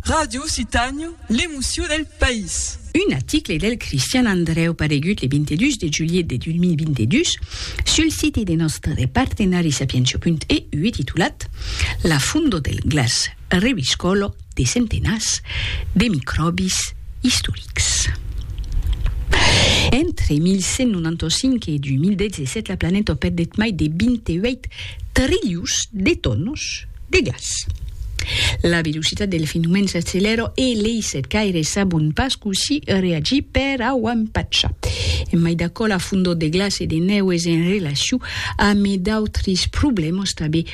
Ràdio Occitània, l'emocion del país. Un article del Cristian Andrèu paregut le 22 de julhet de 2022 sul site de nòstre partenari sapientia.eu e titulat La fondo del glaç reviscòlo de centenats de micròbis istorics. Entre 1195 e 2017 la planeta perdèt mai de 28 trilhons de tònos De gas. La velocitat del fenomen s'accelèra e lei setcaires sabon pas cossí reagir per a o empachar. En mai d'aquò, la fondor de glaç e de nèu es en relacion amé d'autres problèmas tanbé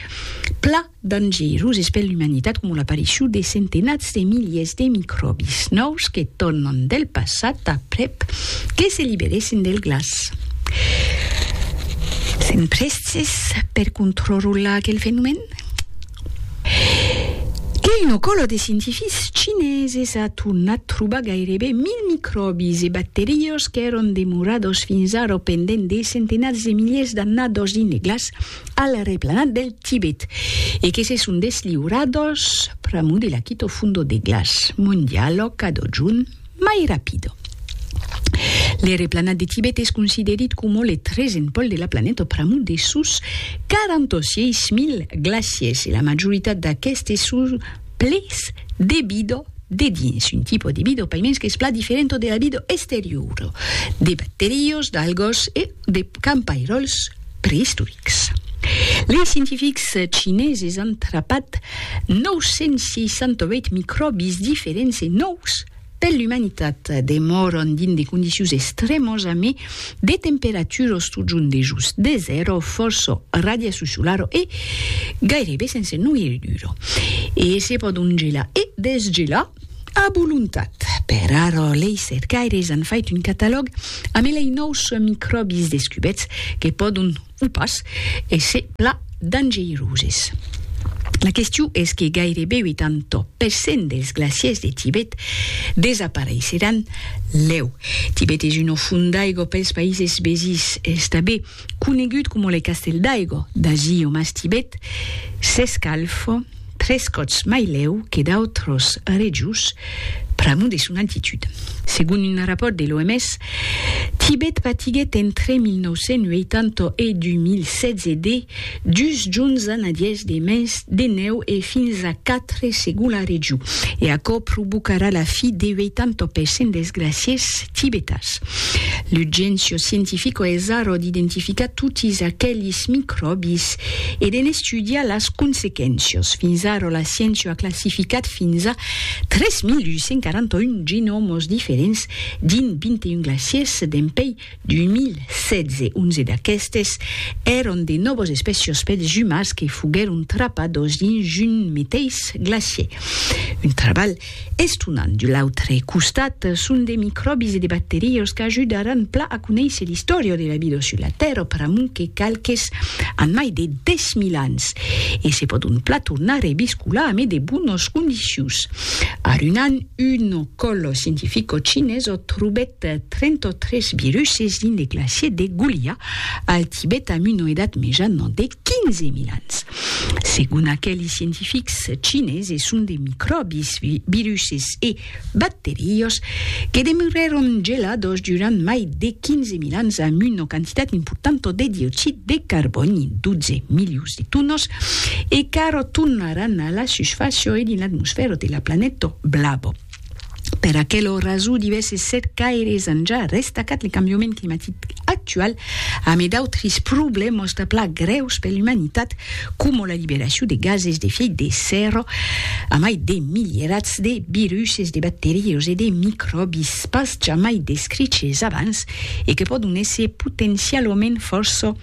pla dangeroses per l'umanitat coma l'aparicion de centenats Se miliers de micròbis nòus que tornan del passat aprèp que se liberèssen del glaç son prèstes per contrrolar aquel fenomèn? Que una còla de scientifics chineses a tornat trobar gaireben 1000 micròbis e bacteriós qu'èron demorados fins ara pendent de centenats de miliers d'annados dins de glaç, al replanat del Tibet e que se son desliurados pr'amor de l'Akito Fundo de Glaç, mon dialòg cadó junt mai rapido. Le replanat de Tibet es considerit coma le tresen pòl de la planeta pr'amor de sos 46.000 glaciers e la majoritat d'aquestes son ples de vida de dins, un tipo de vida paimens qu'es pla diferenta de la vida exteriora, de bacterios, d'algas e de campairòls preistorics. Lei scientifics chineses an trapat 968 micròbis diferents e nòus per l'umanitat. Demòran dins de condicions extrèmas amé de temperaturas totjorn dejós de zèro, fòrça radiacion solara e gairebe sense noirridura. E se pòdon gelar e desgelar. A volontat. Per ara, lei cercaires an fait un catalòg amb elei nòus micròbis descubets que pòdon, o pas, èsser pla dangeiroses. La question es que gairebe 80 per cent dels glaciers de Tibet desapareisseràn lèu. Tibet es una font d'aigua pels païses vesins, estabé. conegut coma le castèl d'aigo d'Agi o mas Tibet, s'escalf tres còps mai lèu que d'autros rejos pr'amor de son altitud. Segon un rapòrt de l'OMS, Tibet patiguèt entre 1980 e 2016 de dus jorns a nadièrs de mens de nèu e fins a quatre segon la region, e aquò provocarà la fi de 80% dels glacièrs Tibetas. L'urgéncia scientifica es ara d'identificar totis aquelis micròbis e de n'estudiar las consequéncias. Fins ara la sciéncia a classificat fins a 3.841 genòmas diferents dins 21 glaciers dempuèi 2016. 11 d'aquestes èran de nòvas espècias pels umans que foguèron trapadas dins un meteis glacier. Un trabalh Estonant de l'autre costat, son de micròbis e de bacterias qu'ajudaràn plan a conéisser l'istòria de la vida sus la Tèrra pr'amor que qualques an mai de 10.000 ans e se pòdon plan tornar a rebiscolar amé de bonas condicions. A Runan, un còl scientifico chinés ò trobèt 33 viruses dins de glaciers de Gulia al Tibet amb una edat mejana de 15 mil ans. Segon aqueli scientifics chines e son de micròbis, viruses e bacterios que demurèron gelados durant mai de 15 mil ans amb una quantitat importanta de dioxid de carbòni, 12 milions de tonas, e qu'ara tornaràn a la susfàcia e dins l'atmosfèra de la planeta blava. Per aquelo raso divèsses set caires an ja restacat le cambiament climatic actual amé d'autres problèmas de pla grèus per l'umanitat coma la liberacion de gases d'efièit de sèrra amai de milierats de viruses, de bacterias e de micròbis pas jamai descriches abans e que pòdon èsser potencialament fòrça